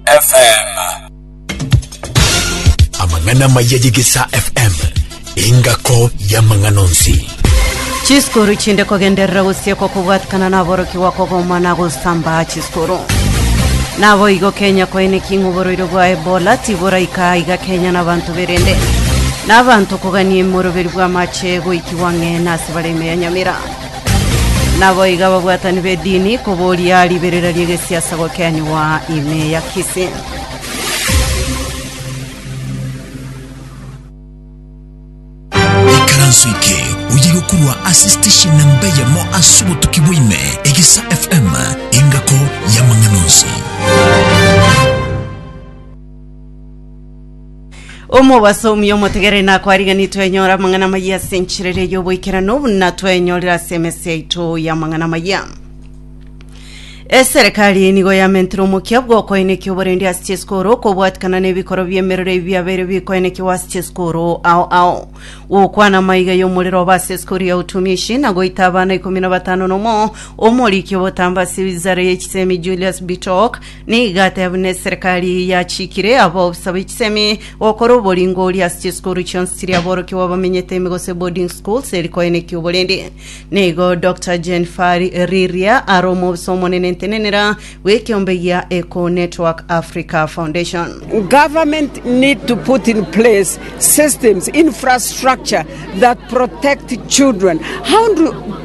FM. Amang'ana amaya y'Egesaa FM, engako y'amang'ana onsi. Chisikuru chinde kogenderera gosiekwa kobwatikana naborokigwa kogoma na gosamba chisikuru. Naboigo Kenya koenekia ng'a oborwaire bwa Ebola tiboraika aiga Kenya na abanto berende. Nabanto kogania emoroberi bw'amache goikigwa ng'e nase bare ime ya Nyamira. Naboigo ababwatani b'edini koboria riberera ri'egesiasa gokenigwa ime ya Kisii. ikaranso eke oyire okorwa ase station namba eyemo ase obotuki bwa ime egesa fm engako y'amang'ana onsi Omobasomi omotegereri nakwariganire twenyora amang'ana amayia ase enchera eria y'oboikeranu buna twenyorire ase emesi yaito y'amang'ana amayia. Eserekari nigo yamentire omokia bw'okoenekia oborendi ase chisukuru okobwatikana n'ebikoro bi'emerero ebi biabeire bikoenekiwa ase chisukuru ao ao gokwana amaiga y'omorero oba ase esukuru ya utumishi na goita abana ikomi na batano nomo omoriki obotamba ase wizara y'echisemi Julius Bitok Nigo ate buna eserekari yachikire abaofisa b'echisemi gokora oboringoria ase chisukuru chionsi chiria aborokigwa bamenyete ime gose boarding schools eri koenekia oborende. Nigo Dr. Jane Fari Riria are omobisa omonene ntenenera bw'ekeombe gia Eco Network Africa Foundation. Government need to put in place systems, infrastructure that protect children. How do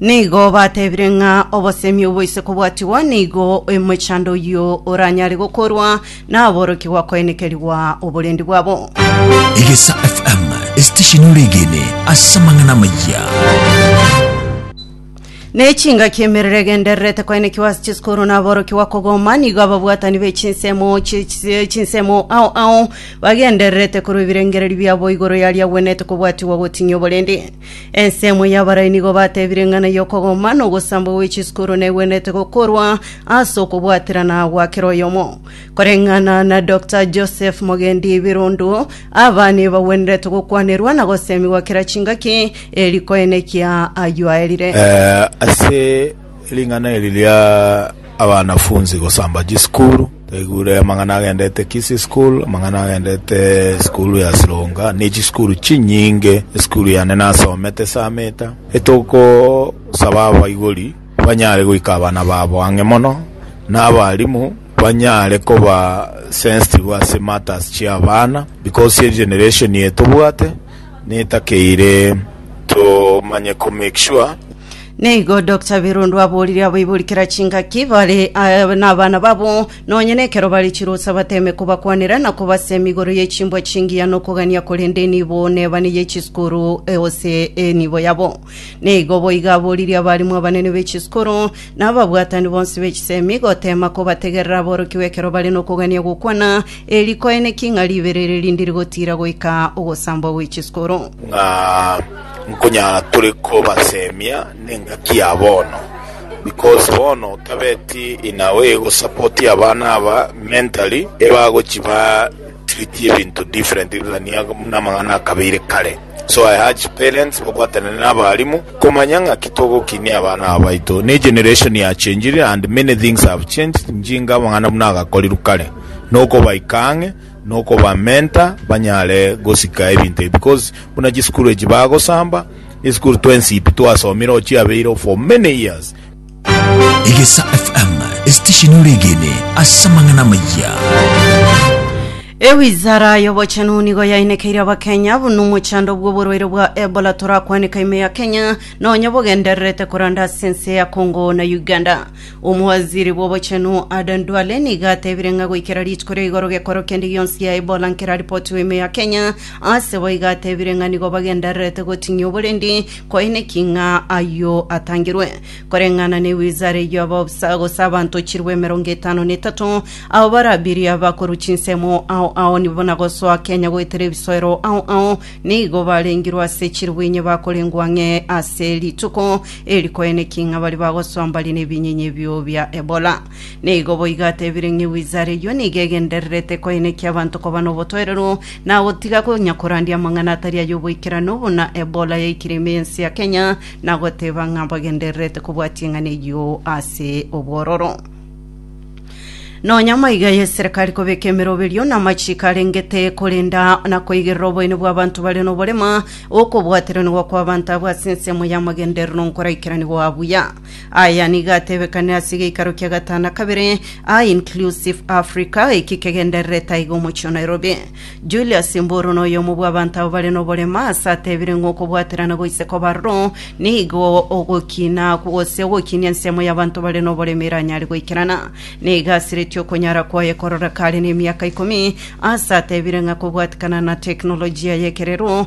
Nigo batebire ng'a obosemi obo ise kobwatigwa nigo emochando oyio oranyare gokorwa naborokigwa koenekerigwa oborendi bwabo. Egesa FM esitesheni oregene ase amang'ana amayia. Nechingaki emerero egendererete koenekiwa ase chisukuru naborokigwa kogoma nigo ababwatani be chinsemo chi- chi- chinsemo ao ao bagendererete korwa ebirengererio biabo igoro yaria agwenete kobwatigwa goting'ia oborendi. Ensemo y'abarai nigo batebire ng'a na y'okogoma na ogosamba gwe chisukuru negwenerete gokorwa ase okobwaterana gwa kera oyomo. Koreng'ana na Doctor Joseph Mogendi Birundu, abana ebagwenerete gokwanerwa na gosemigwa kera chingaki, eri koenekia ayio aerire. Eh, ase Ring'ana eri ria abanafunsi gosamba chisukuru, twaigure amang'ana agendete Kisii School, amang'ana agendete esukuru ya Sironga, ne chisukuru chinyinge. Esukuru yane nasomete esameta, etogosaba abaibori banyare goika abana babo ang'e mono, na abarimu banyare koba sensitive ase matters chi'abana, because egeneration eye tobwate, Netakeire tomanye ko make sure. Neigo Doctor Birundu aboririe abaibori kera chingaki bare eh, nabana babo nonye nekero bare chirosa bateme kobakwanera na kobasemi igoro ye chimbwa chingiya nokogania korende nibo nebane ye chisukuru eh, ose enibo yabo. Neigo boiga aboririe abarimu abanene be chisukuru na ababwatani bonsi be chisemi gotema kobategerera aborokigwe ekero bare nokogania gokwana Eri rikoeneki ng'a ribere ere rinde rigotiira goika ogosambwa gwe chiskoro. Ng'a nkonyara tore kobasemia nengaki ya bono because bono otabeti in a way go support abana aba mentally ebagochi ba treat ebinto different than buna amang'ana akabeire kare so I urge parents babwatane na abarimu komanya ng'aki togokinia abana aba baito ne generation ya changire and many things have changed njinga amang'ana buna agakorirwe kare nokobaika ang'e, nokobamenta banyare gosika ebinto ebi, because buna chisukuru echi bagosamba, esukuru twensi pi twasomire o chiabeire for many years. Egesa FM, esitesheni oregene ase amang'ana amaya. Ewizara y'obochenu nigo yainekeire abakenya buna omochando bw'oborwaire bwa Ebola torakwaneka ime ya Kenya nonye bogendererete koranda ase ense ya Congo na Uganda. Omowaziri bw'obochenu Aden Duale nigo atebire ng'a goikera rituko ria igoro gekoro kende gionsi ya Ebola nkeraripotiwe ime ya Kenya, ase bo iga atebire ng'a nigo bagendererete goting'ia oborendi koine ki ng'a ayio atangirwe. Koreng'ana ne wizara eyio abaobisa gose abanto chilifu emerongo etano na etato abo barabirie abakorwa chinsemo ao ao nibo na gosoa Kenya goetera ebisoero ao ao nigo barengirwe ase chilifu inye bakorengwa ang'e ase rituko Eriko aine ki ng'a baria bagosombaria nebinyinyi ebio bia Ebola? Nigo boigo atebire ng'a ewizara eyio nigo egendererete koenekia abanto koba nobotoereru na gotiga konya korandia amang'ana atari ay'oboikeranu buna Ebola yaikire ime y'ense ya Kenya na goteba ng'a bagendererete kobua ching'ana eyio ase obwororo. Nonya maiga y'eserekari kobeka emeroberio na amachiiko arengete korenda na koigerera oboyene bw'abanto bare noborema, okobwateranigwa kw'abanto abwo ase ensemo y'amagenderero nkoraikeranigwa buya. Aya nigo atebekanire ase egeikaro kia gatano na kabere, a Inclusive Africa, eki kegendererete aiga omochie o Nairobi. Julius Mburu noyomo bw'abanto aba bare noborema ase atebire ng'a okobwaterana goise kobaroro nigo ogokina gose ogokinia ensemo y'abanto bare noborema eranyare goikerana. Nigo asiretie okonyara kwaye kororeka are nemiaka ikomi ase atebire ng'a kobwatikana na teknolojia y'ekerero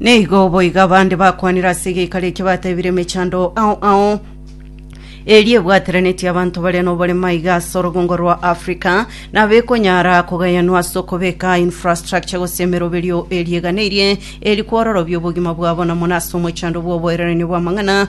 Nigo boigo abande bakwanire ase egeikaro ekio batebire emechando ao ao eria ebwateranetie abanto bare noborema iga ase orogongo rwa Africa, nabekonyara kogayanwa ase okobeka infrastructure gose emeroberio eria eganeirie eri kwororobia obogima bwabo na mono ase omochando bw'oboiraneria bw'amang'ana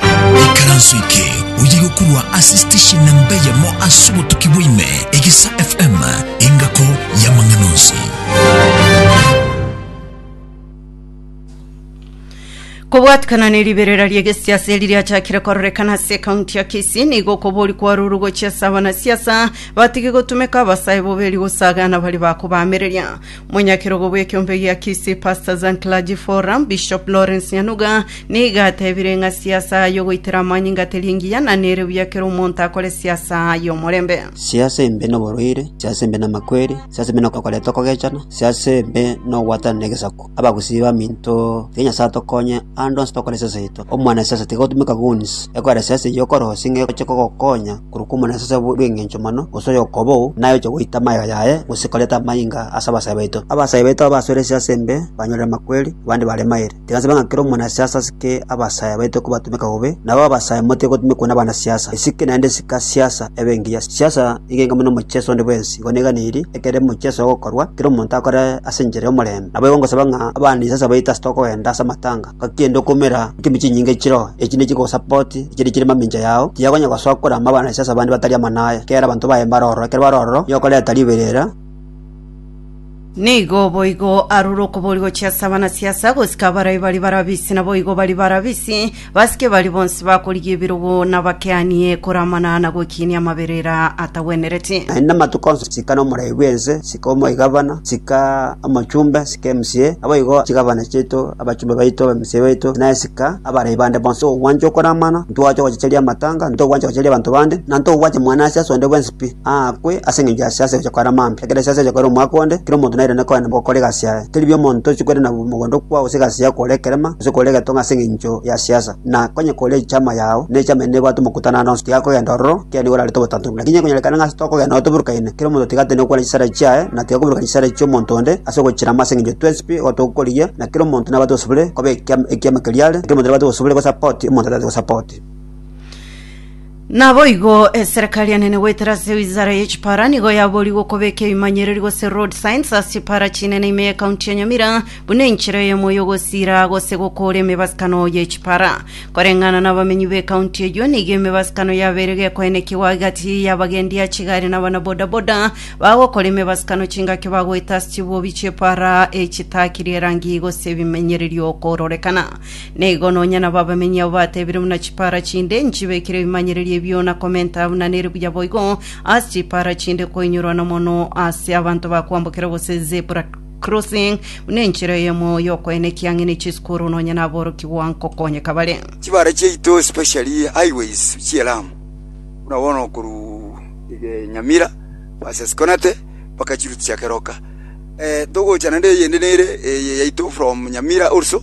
Ekaranso eke oye gokorwa ase station na mbeyemo ase obotuki bwaime, Egesa FM, engako y'amang'ana onsi. Kobwatikana ne riberera ri'egesiasa eri riachakire kororekana ase ekaunti ya Kisii nigo kobori kwaruru gochia ase abanasiasa batige gotumeka abasae boberi gosagana bari bakobaamereria. Monyakerogo bw'ekeombe gia Kisii Pastors and Clergy Forum, Bishop Lawrence Nyanuga Nigo atebire ng'a siasa y'ogoitera amanyinga teri engiya, na nere buya kera omonto akore siasa y'omorembe. Siasa embe noborwaire, siasa embe namakweri, siasa embe nokoreta okogechana, siasa embe nogwatanana negesaku. Abagusii baminto, tiga Nyasae atokonye ande onsi tokore siasa yaito. Omwana siasa tiga otumeka guns, ekogera siasa eyio okore gose ng'a egochia kogokonya korwa kw'omwana siasa bw'engencho mono, gose oyokobou, naye oche goita amagega yaye gose koreta amanyinga ase abasae baito. Abasae baito abasore siasa embe banyorire amakweri, abande bare mairi. Tigasaba ng'a kera omonasiasa asike abasaayi abaito kobatumeka bobe, nabo abasaayi motige gotumekwa nabanasiasa. Esike naende sika siasa ebe engiya. Siasa nigo enke buna omochieso onde bwensi. Igo neganiri, ekero omochieso ogokorwa, kera omonto akore ase enchera y'omorembe. Naboigo ngosaba ng'a abanisiasa baito ase tokogenda ase amatanga, ngaki ende okoumera enchimi chinyinge chiroo, echi nigo chigosapoti echiria chire mamincha yao, tiyakonya gosoa korama abanasiasa abande batari amo naye. Kera abanto baye mbare ororo, ekero bare ororo, nigo okoreta riberera. Nigo boigo arure okobori gochia ase abana siasa gosika abarai baria barabisi naboigo baria barabisi, basike baria bonsi bakorigia ebirogo nabakeanie koramana na gokiinia amaberera atagwenereti. Naende amatuko onsi sika nomorai bw'ense, sika omoigabana, sika omochumbe, sika emcea, naboigo chigabana chiaito, abachumbe baito, abemcea baito, naende sika abarai bande bonsi. Togwancha okoramana, ntitogwancha ogochicheria amatanga, ntitogwancha ogochicheria abanto bande, na ntitogwancha mwana ase ase onde bwensi. pi, aakwe ase engencho ya siasa egocha koera mambia. Ekero siasa egocha koera omwaka onde, kera omonto nairane koenda gokora egasi yaye. Teri bi omonto tochi koirana mogondo okwo gose egasi yao kore ekerema gose kore egetonga ase engencho ya siasa. Na konya kore echama yao ne echama eye nebwate omokutano ande onsi, tigakogenda ororo, kera nigo orarete obotantanori. Lakini ekonyarekana ng'a ase tokogenda nabo toburukaine, kera omonto tiga atinde gokwana chisare chiaye, na tiga koburukana chisare chi'omonto onde ase ogochirama ase engencho twensi pi igo togokorigia, na kera omonto nabwate obosubore koba ekiama ekiama keria are, na kera omonto nabwate obosubore gosapoti omonto otabwati gosapoti. Naboigo eserekari enene goetera ase wizara ye chipara nigo yaboorigwe okobeka ebimanyereri gose road signs ase chipara chinene ime ye county ya Nyamira buna enchera eyemo y'ogosiira gose gokoora emebasikano ye chipara. Koreng'ana nabamenyi be county eyio nigo emebasikano yabeire gekoenekigwa agati y'abagendi ya chigari na abana bodaboda bagokora emebasikano chingaki bagoeta ase chibuobi chiepara echitakirie erangi gose ebimenyererio kororekana. Nigo nonya nabo abamenyi abo batebire buna chipara chinde nchibekire ebimanyererio ebio na komenta buna nere buya boigo ase chipara chinde koinyorwa nomono ase abanto ba kwambokera gose zebra crossing buna enchera eyemo y'okoena ekiang'eni echisukuru nonya naborokigwa nkokonyeka bare. Chibara chiaito especially highways chie Lamu buna bono korwa eh, Nyamira versus Konate mpaka chiruti chia Keroka. Eh, togocha naende eyende nere eye yaito from Nyamira also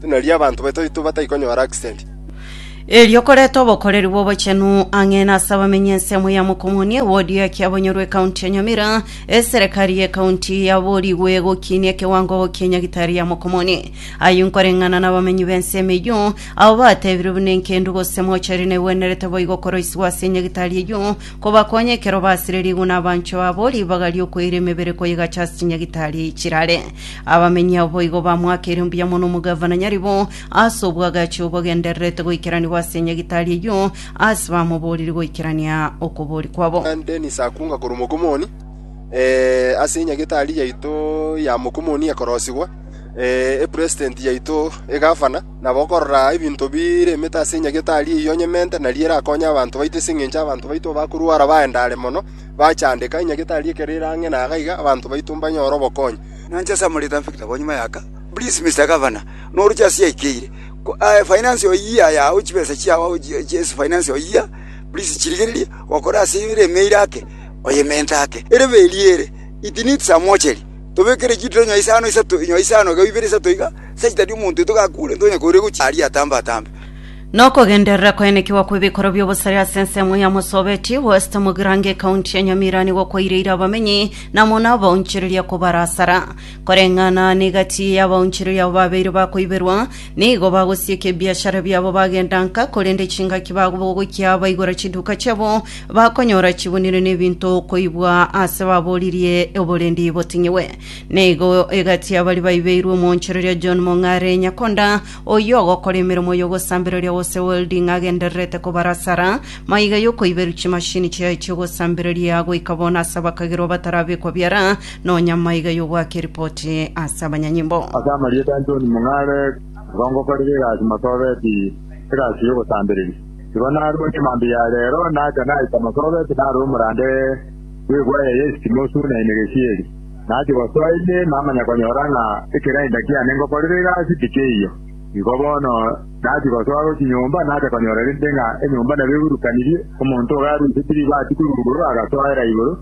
buna erio abanto bataito bataikonyora accident. Erio koreta obokoreri bw'obochenu ang'e nase abamenyi ensemo ya Mokomoni, ewodi ya Kiabonyoru, ekaunti ya Nyamira, eserekari y'ekaunti yaborigwe gokinia ekewango kie Nyagitari ya Mokomoni. Ayio nkoreng'ana n'abamenyi b'ensemo eyio, abo batebirwe buna enkendu gose mochari negwenerete boigo koroisigwa ase Nyagitari eyio, kobakonya ekero basire riguna abanchwa abo ribaga ri'okoira emebere koyegacha ase chinyagitari chirare. Abamenyi boigo bamoakeire mbuya mono omogavana nyarebo ase obwagachi obogendererete goikeranigwa ase enyagitari eyio, ase bamoboririe goikerania okobori kwabo. Dennis akunga korwa Mokomoni, ase enyagitari yaito ya Mokomoni ekorosigwa, epresident yaito, egavana, na bokorora ebinto bire emete ase enyagitari eyio onyemente, nario erakonye abanto baito ase engencho abanto baito bakorwara baendare mono, bachandeka, enyagitari ekero ere ang'e na iga abanto baito mbanyore obokonyi. Nanche ase amorito a Victor Bonyima Yaka, please Mister Governor, noroche ase yaikeire, aye finance oyie aya awo chibesa chiao awo ase finance oyie, please chirigererie gokora ase ere emeire ake oye mente ake, erebe eria ere, it needs a mortuary, tobekere chituro inyo isano isato, inyo isano iga ibere isato iga, such that omonto oito gakure, ntonye koiregochia aria atambe atambe. Nokogenderera koenekigwa kw'ebikorwa bi'obosare ase ensemo ya Musobeti, West Mugirango ekaunti ya Nyamira nigo kwaireire abamenyi na mono abaonchoreria kobara asara. Koreng'ana ne gati y'abaonchoreria abo babeire bakoiberwa, nigo bagosieka ebiashara biabo bagenda nka, korende chingaki bagobogokia baigora chiduka chiabo bakonyora chibunire n'ebinto koibwa ase baboririe oborendi boteng'igwe. Nigo egati y'abaria baibeirwe omoonchoreria John Mong'are Nyakonda, Oyio ogokora emeremo y'ogosambereria gose welding agendererete kobarasara maiga y'okoiberu chimashini chiaye chi'ogosambereria goika bono ase abakagerwa batarabekwa biara, nonya maiga y'ogoaka eripoti ase abanyanyimbo. Ase amarieta a John Mung'are, igo ngokorera egasi Marsabit, egasi y'ogosambereria. Igo narua chimambia ya reero nacha naika Marsabit narora omorande bw'ebwaya y'esitimosu na emegesieri. Nache gosoetie namanya konyora ng'a ekegainda kiane ngokorire egasi tikeiyo. Igo bono nachi gosoa gochia nyomba nacha konyora rende ng'a enyomba nabo egurukanirie, omonto oga aruise tiribati korurugorwa agasoera igoro,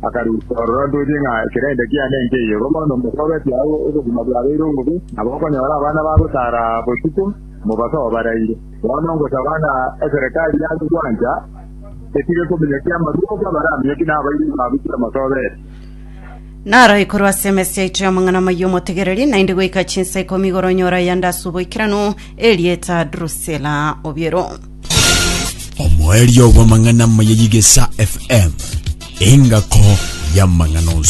akarusia ororo ntoche ng'a ekegainda kiane nkeiyo. Igo bono mosobetie agwo obogima bwabeire obobe, nabo okonyora abana bagotara botuko, mobasoe baraire. Bono ngosaba ng'a eserekari yane gwancha etige kominyokia amarwa onsi abaramiyoki nabairi babu kera mosobetie. Naro ikorwa ase emesi yaito y'amang'ana amaya omotegereri, naende goika chinsa ikomi igoro nyora yande ase oboikeranu, erieta Drusila Obiero. omoerio bw'amang'ana amaya y'igesa fm engako y'amang'ana onsi